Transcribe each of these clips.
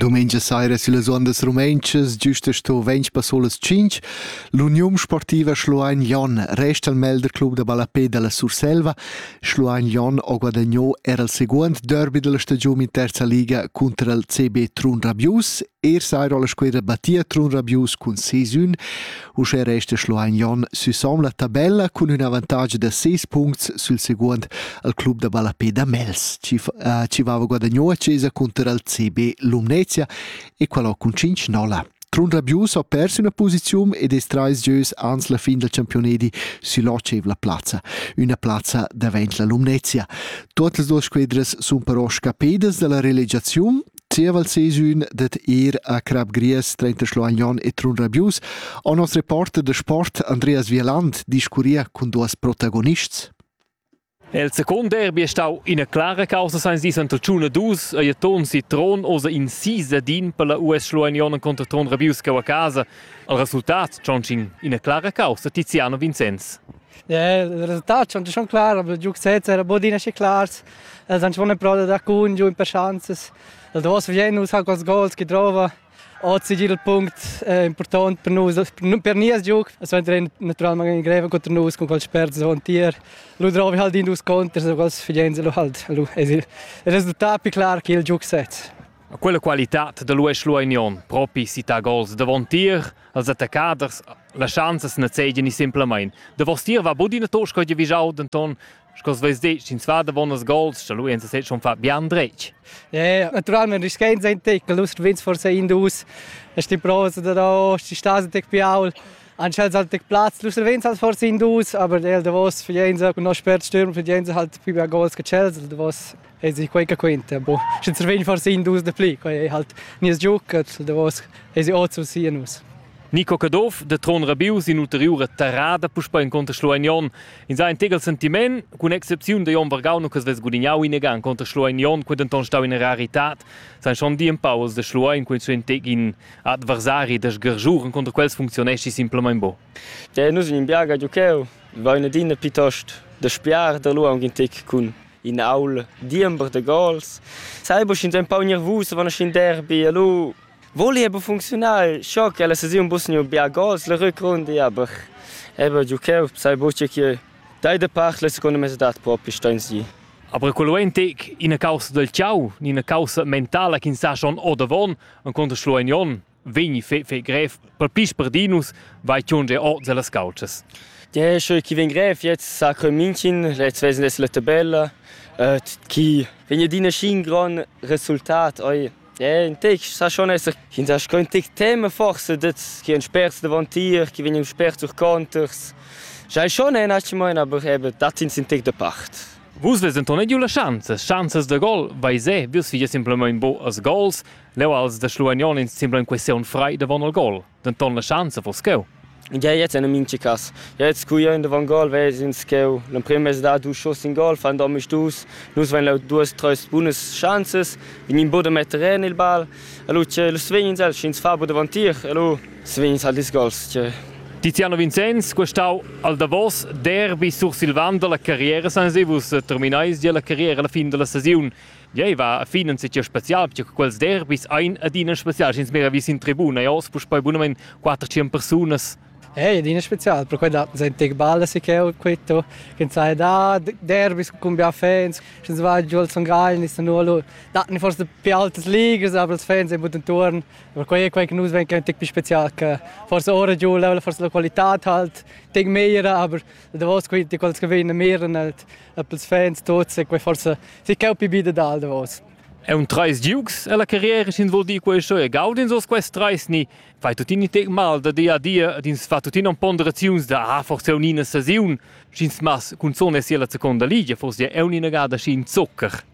Domenica saira sillas ondas rumentschas, giusta sto ventg passolas cinc, l'Uniun Sportiva Schluein Jon resta al Melder Club da ballapé dalla Surselva. Schluein Jon ha guadagnò era il segundo derby della stagione in terza liga contro il CB Trun Rabius. Er saira la squadra battia Trun Rabius cun 6-1. Uschè resta Schluein Jon süsom la tabella cun ün avantatg da 6 puncts sül seguond al club da ballapé da Mels, chi, uh, chi vava guadagnou a Cesa cunter al CB Lumnezia e qualò cun 5 nolla. Trun Rabius ha perso üna posiziun ed es trais gieus ans la fin dal champiunedi sül'otschevla plazza. Üna plazza davent la Lumnezia. Tuot las duas squedras sun però scappedas da la relegiaziun Zieval sesün dad ir a Crap Gries trenta Schloagnon e Trun Rabius o nos reporter da sport Andreas Wieland discurria cun duos protagonists. El second derby è stau ina clara causa seins dis anta Tschuna 2 ei ton si tron osa in sisa din per la US Schloagnon contro Tron Rabius a casa. Al resultat tschontin ina clara causa Tiziano Vincenz. Ja, il resultat schon schon klar, aber Duke Sets era bod ina schi clars. Els han schon ein pro da dar cun giu in per schanzas. Il davos vien nus ha quels gols che drova oz igl punct eh, important per nus per nies giug es naturalmente in greva contro nus con quel sperzo on tier lu drovi halt in dus conters so quels fidenze lu halt lu es il resultat più clar che il giug sez Quella qualitad da Luis Luagnon propi sita gols davon tier als attaccaders la chanzas na zeigen ni simplemein. Da vos tier va bud ina tosca di vigiau denton Sco veis dit, sch'ins va davon las gols, da lui ins sei schon fat bien dretg. Ja, naturalment ist kein sein Deckel, lust wins vor sei in dus. Es die Prose da da, die Stase tek piaul. Anschel halt tek Platz, lust wins halt vor sei in dus, aber der davos für jense und noch spert stürmen für jense halt più gols che Chelsea davos. E si quei che quenta, bo, sche survegn forse in dus de pli, quei ei halt nies giuc, davos ei si oz sia nus. Nico Caduff de Tron Rabius in ulteriura terrada puspei inconter Schlueignon. In sa ein tegel sentiment cun excepziun de Jon Vargauno che svess gudignau in egan conter Schlueignon, quei denton stau in raritad. San schon di in pauls de Schluein quei suen tegin adversari de sgergiuren conter quels funzionesci simplemente bo. Ja, nus in biaga giucheu, va una dinna piuttost de spiar de luang in tec cun in aul diember da gols. Sai bu sch'ins empau gnervus van sc'in derbi e lu voli aber funcziunar scho che la sesiun bus gnü bia gols la rückrunde aber eben giucheu sai bu che chi dai da parla secondo me dat propi steins gi. Aber quello è in tec ina causa del ciao, ina causa mentala che ins sa schon ordavon, en conto schlo en jon. vegni fe, fe grev per pis per Dinus vai tiun ge ord las calces. Ja, schön chi vegn grev jetzt sa crön München, jetzt wesen es la tabella, äh, chi vegn dina schin gran resultat oi. Ja, in tec sa schon esser in sa schon tec tema forse das chi ein spers davon tier, chi vegn spers durch conters. Schai schon ein hat mein aber eben dat in sind tec de part. Vus vesen ton giu la chance, chances de gol, vai se, vus fies simplement bo as gols, Leu als da Schluagnon ins sembla in questiun frei davon el gol, denton la schanza vos cheu. Ja jetzt en minchi cas. Jetzt scuiain davon gol, veis ins cheu l'emprim mez da dus schuss in gol, fan domisch dus, nus vain leu duas, treis bunas schanzas, vegnin bu da metter en il ball, allo che lu svegnins el, sch'ins fa bu davantir, allo svegnins al dis gols. Che Tiziano Vincenz, questau al Davos, derbi sursilvan dalla carriera sans vus terminais gia la carriera alla fin della stagione. Jei va a fin en setgir special, perché quels derbis ein adina specials. Ins mira vi sin tribuna e oz puspei bunamein 400 persunas. Ei adina special, per quella sein tec balla si che quetto, che sai da derbis con bia fans, schens va giù al Son Gagl, nis nulo, datni forse più altas ligas, aber els fans e buttan turn, per quei quei che nus ven che tec più special che forse ora giù la forse la qualità halt, tec meira, aber da vos quei ti quels che vein mehren halt, e pels fans tuots e quai forsa si ch'eu pi bi dad al davos. È un trais giugs e la carriera sin vuol dir quai e gaudins os quest trais ni fai tutini tec mal da dia a dia ed ins fa tuttina ponderaziuns da ah forse un'ina sesiun sch'ins mas cun zone sia la seconda ligia forse è un'ina gada schi in zocker.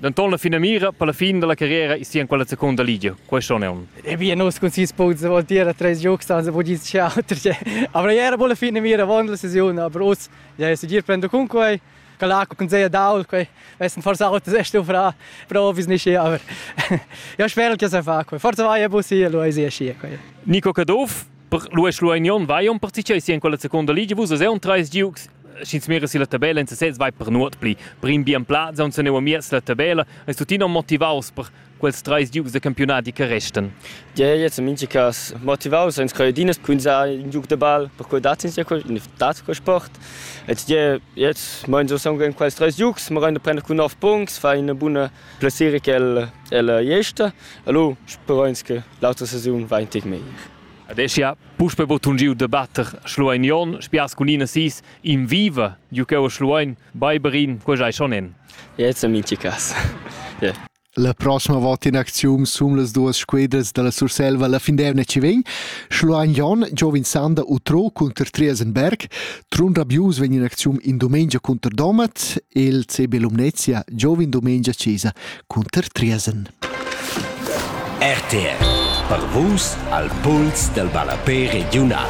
Denton la finamira per la fin dalla carriera is sia quella secunda ligia. Questo non è un. E bien nus cun sis punts vuol dire treis giugs anzi vuol dire che auter che. Aber era buona fine mira avon la sesione, aber us ja ist dir prendo con quei. Kalako kun sehr daul, quei wessen forse auto sehr stu fra, provis nicht hier, aber ja spero che se fa quei. Forse vai a bus hier, lo ist hier quei. Nico Caduff Per Luis Luignon vai un participio sia in quella seconda liga vus es un treis giugs sch'ins mira si la tabella in sesez vai per nuot pli prim bien plaz on se neu amiez la tabella es tuttina motivaus per quels treis giugs de campionati che restan Ja, jetzt im Minchkas motivaus ins kann dinas punzar in giug de ball per quel dat ins ja in dat quel sport jetzt je jetzt mein so sagen in quels drei giugs ma rein prender cun 9 punkt fa eine bunne Plessira ch'el ella jesta, allo sperains che l'autra sesiun va in tec meglier. Adesch ja puspe bod tun giu debatter Schluein Jon, spias cun ina sis in viva, giu cheu Schluein Beiberin, quei ei schon en. Jetzt am inti cas. yeah. La prossima volta in acziun sum las duas squedras dalla Surselva la fin d'emna ci vegn Schluein Jon, Giovan Sander u Tro cunter Triesenberg, Trun Rabius vegn in acziun in dumengia cunter Domat e il CB Lumnezia giova in dumengia Cesa cunter Triesen. RTR per vus al puls del ballapé regiunal.